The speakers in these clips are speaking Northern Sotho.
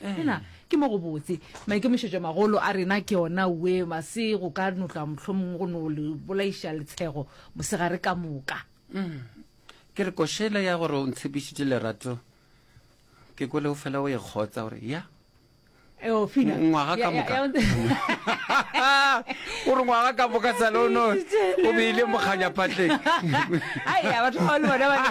Fela ke mo gobotse. Maikemišetšomagolo a rena ke ona we, mase go ka no tloga mohlomongwe go no le bolaiša letshego mosegare ka moka. Ke re košela ya gore o ntshepišitše lerato, ke kwele o fela o e kgotsa gore ya. Eo, Fina. Ngwaga ka moka. Ya, ya, O re ngwaga ka moka sale o no o beile mokganyapatleng. Ai, ya batho ba le bona ba ne.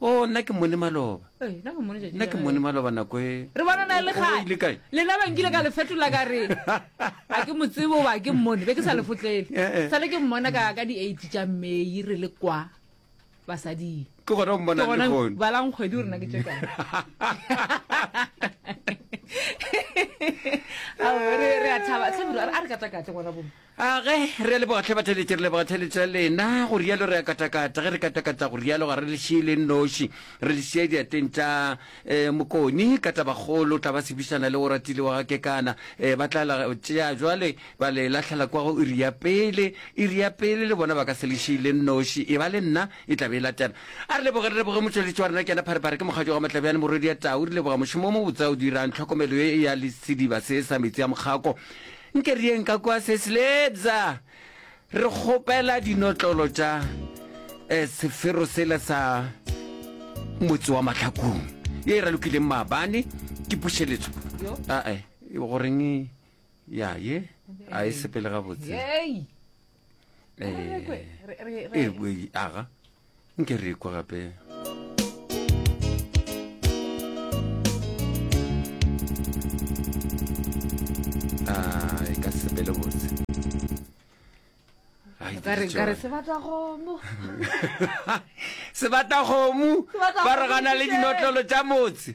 o oh, nna ke mone maloba eh, nna ke mone maloba nako e re bonana le gae lena bankile ka lefetola ka re a ke motsebo ba ke mmone be ke sa lefotlele eh, eh. sale ke mmona ka ka di-eight tša mmei re le kwa basading ke gona o mmona leone balang kgwedi o rena ke tšeka re a thaba tlhabiro a re katakate ngwana bone A ge re a leboga hle batheletši, re leboga theletšo ya lena, go rialo re a katakata, ge re katakata go rialo ga re le šie le nnoši, re le šia diateng tša eh, Mokoni ka tabakgolo, tla ba sebišana le Oratile wa ga Kekana, eh, ba tla la tšea jwale ba le lahlela kwa go iri ya pele, iri ya pele le bona ba ka se le šie le nnoši, e ba le nna e tla be e latela. A re leboge, re leboge motšweletši wa rena ke yena Pharephare, ke mokgatšo wa Matlabjane Morwedi ya Tau, re leboga mošomo o mobotse o dirang, tlhokomelo ye ya le sediba se sa metsi a mokgako, Nke re yeng ka kwa Cecily eupsa re kgopela dinotlolo tša eh, sefero sela sa motse wa mahlakong ye e ralokileng maabane ke pušeletso ae goreng ya ye a e sepele gabotse Yey! ee aga nke re kwa gape e ka sepele botse sebata kgomo ba re gana le dinotlolo tša motse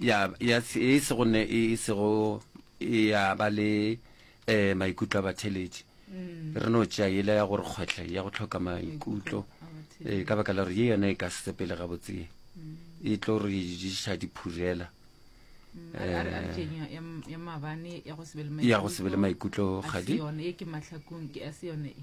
ya, ya, e sego ne e sego ya ba le eh maikutlo a batheletši re no tšea yela ya gore kgwetlha ya go tlhoka maikutlo eh ka baka la gore ye yona e ka se sepele gabotsee e tlo re diša diphurela A re- a re- a re Eh. tšeng ya- ya m- ya maabane ya go se be le ya go se be le maikutlo maikutlo ga ga se di yone e ke mahlakong ke a se yone e